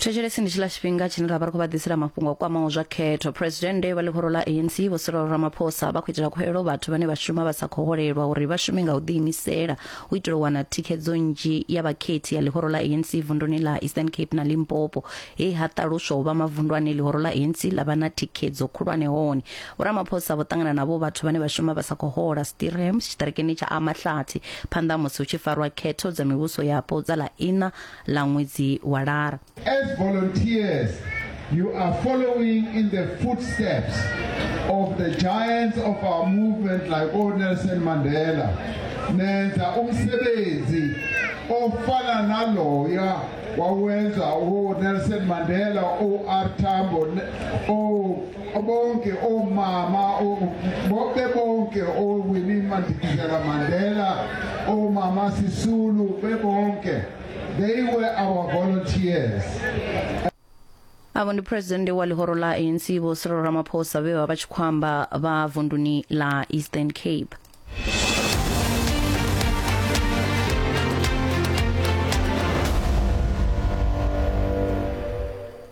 thetshelesi ndi tshila tshifhinga tshine ra vha ri khou vha ḓisela mafhungo o kwamaho zwa khetho phuresidennde vha ḽihoro ḽa anc vho sirolo ramaphosa vha khou itela khuhelo vhathu vhane vha shuma vha sa khou holelwa uri vha shume nga u ḓiimisela u itela u wana thikhedzo nnzhi ya vhakhethi ya ḽihoro ḽa anc vunduni ḽa eastern cape na limpopo he ha ṱaluswa u vha mavundu ane ḽihoro ḽa anc ḽa vha na thikhedzo khulwane hone Vho Ramaphosa vho ṱangana na vho vhathu vhane vha shuma vha sa khou hola Stirhams tshiṱirikini tsha Amahlathi phanḓa musi hu tshi farwa khetho dza mivhuso yapo dza ḽa ina ḽa ṅwedzi wa Lara. As volunteers, you are following in the footsteps of the giants of our movement like old Nelson Mandela. Nenza umsebenzi ofana naloya wawenza uNelson Mandela, uR Tambo, o Bonke oomama bonke bonke ooWinnie Madikizela Mandela, oomama Sisulu bebonke. They were our volunteers. avho ndi phuresidennde wa ḽihoro ḽa anc vho cyril ramaphosa vhe vha vha tshi khou amba vha vunduni ḽa eastern cape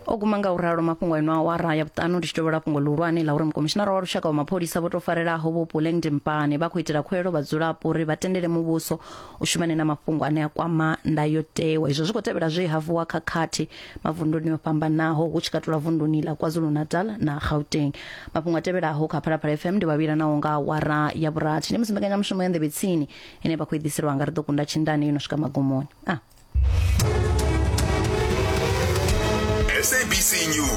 o guma nga u ralo mafhungo a ino awara ya vhuṱanu ndi tshi tovhola fhungo ḽihulwane ḽa uri mukomishinara wa lushaka wa mapholisa vho tou farelaho vho puleng dimpane vha khou itela khuelo vhadzulapo uri vha tendele muvhuso u shumane na mafhungo ane a kwama ndayotewa izwo zwi khou tevhela zwe ha vuwa khakhathi mavunduni o fhambanaho hu tshi katula vunduni ḽa kwazulu-natal na gauteng mafhungo a tevhelaho kha phalaphala fm ndi vhavhilanaho nga awara ya vhurathi ndi musi mbekanyamushumo ya nḓevhe tsini ine vha khou i ḓiselwa nga ri ḓo kunda tshindane yo no swika magumoni a sabc news